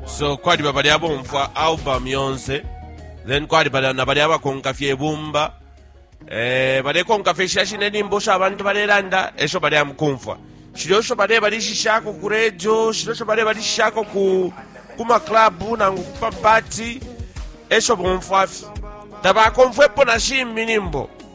so kwali babali abomfwa album yonse then kwali bala na bali abakonka fye ibumba eh balekonka fye shashi nenimbo sha abantu balelanda esho bali amukumfwa shilo sho bale balishishako ku radio shilo sho bale balishishako ku kuma club nangu kupa party esho bomfwa fye tabakomfwepo na shimbi nimbo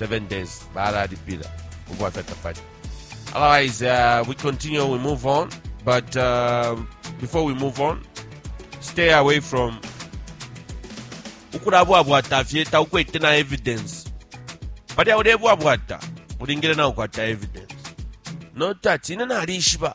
7 days balalipila ubwafya tapali otherwise uh, we continue we move on but uh, before we move on stay away from ukulabwabwata fye taukwete na evidence palya ulebwabwata ulingile naukwata evidence notati ine nalishiba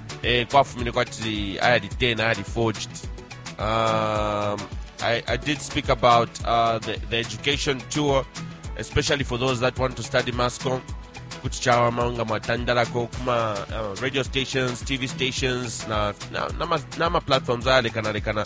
eh, kwafumine kwati ayali 10 ayali forged um, I, I did speak about uh, the, the education tour especially for those that want to study mascom kuti chawama nga mwatandalako kuma uh, radio stations tv stations na, na, na, ma, na ma platforms ayalekanalekana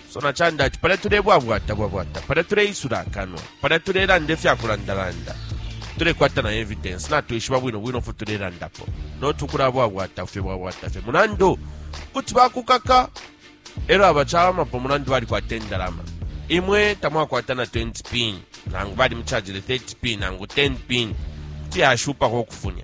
sona canda ati palya tulebwabwata bwabwata palya tuleisula akanwa palya tulelanda ifyakulandalanda tulekwata na evidence natwishiba bwino bwino fo tulelandapo noti ukulabwabwata fye bwabwata fye mulandu kuti bakukaka elo abacawamapo mulandu balikwata endalama imwe tamwakwata na 20 pin nangu balimuchajile 30 pin nangu 10 pin kuti yashupako okufunya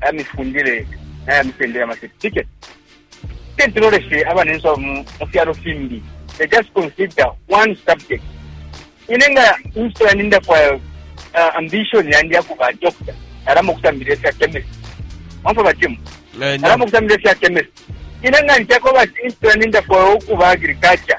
aya mifundile naya mitendere ama certificate tentiloleshe abanenso mu fyalo fimbi they just consider one subject ine nga insto yandi ndafwaya uh, ambition yandi yakuba doctor alama okutambira efya chemist omfa batimu eh, alama okutambira efya chemist ine nga ntyako bati insto yandi ndafwaya okuba agriculture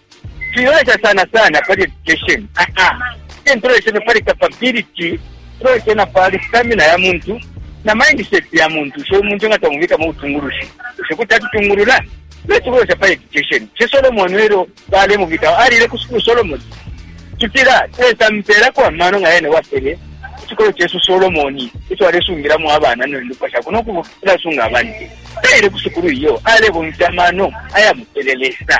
Twilolesha sana sana pali education a-a, tiyeni tuloleshe na pali capability, tuloleshe na pali stamina ya muntu na mindset ya muntu. Bushe uyu muntu nga twamubika mu butungulushi, bushe kuti atutungulula? Tuleti ukulolesha pali education. Bushe Solomone lelo balemubika, alile ku sukulu Solomone? Tutila Lesa amupeelako amano nga yene wapele icikolo cesu Solomone ico alesungilamo abana ne ndupwa shakwe no kulasunga abantu. Taile ku sukulu iyo, alebomfya amano ayamupele Lesa.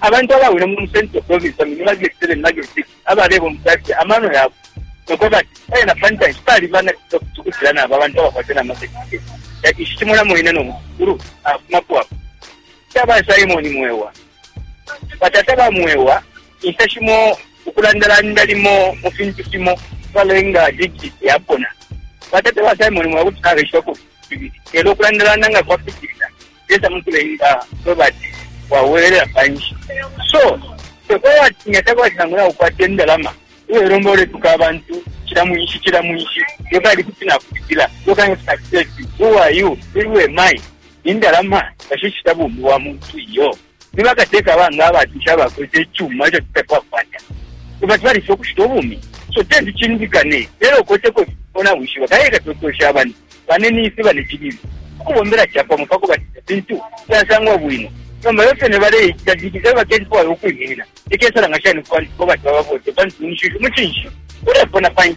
Abantu abawile mu Central Province bambi ni ba grade 7 na grade 6 abalebomfya fye amano yabo no kweba ati e na pa ntanshi pali banakilila kuti ukucila na aba bantu abakwata na masertifiketi. Ici cimona mwine no musukulu afumapo apa. Ca ba Simon Mwewa, batata ba Mwewa, inshita shimo ukulandalanda limo mu fintu fimo kwalenga digiti yapona. Batata ba Simon Mwewa kuti nabeshibako fibili, lelo ukulandalanda nga kwapitilila Lesa mukulenga kweba ati wabwelela panshi so tekweba ati nga takwati nangu naukwata indalama ulelomba uletuka abantu cila mwinshi cila mwinshi yokali kuti nakupitila yokali kuti nakupitila who are you who am I indalama tashishita bumi bwa muntu iyo. Ni bakateka banga abatusha abakwete icuma ico twe tatwakwata? Bati balifilwa ukushita ubumi. So teti cindikane elo ukweteko ifyo nawishiba kaili leka twekoweshe abantu. Bane nifi bane cililu. Ukubombela capamo pakubati ifintu fyasangwa bwino. Nomba elo fene baleicita diki elo baketi fwaya ukwiminina. Cikesalanga shani kubantu kubati babavote pantu munshishi umucinshi ulepona panshi.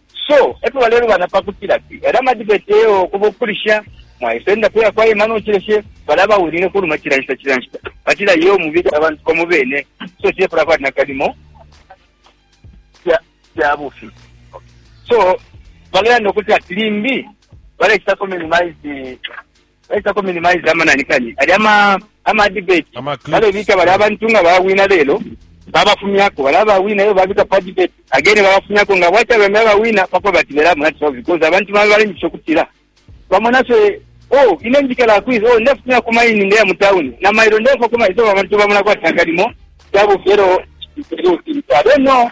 So epo balelubana pakutila ati elyo ama debate eyo kuba ukulisha mwaisa enda kuya kwa Emmanuel Uchileshe bala bawinine kuluma chila nshita chila nshita batila yo mubika abantu pamo bene so chile pala kwati nakalimo ya ya bufi so balelanda ukuti ati limbi balechitako minimize baisa ku minimize amanani kani ali ama ama debate ama balebika bali abantu nga bawina lelo babafumyako bali abawina iyo babika pa debate again babafumyako nga bwacha bembe abawina pako batibelamu nati so because abantu bambi balengisha okutila bamona fye oh ine njikala kwiza oh ndefumya ku maini ndeya mu town na mailo ndefa ku maini so abantu bamona kwatangalimo kyabo fyero I don't know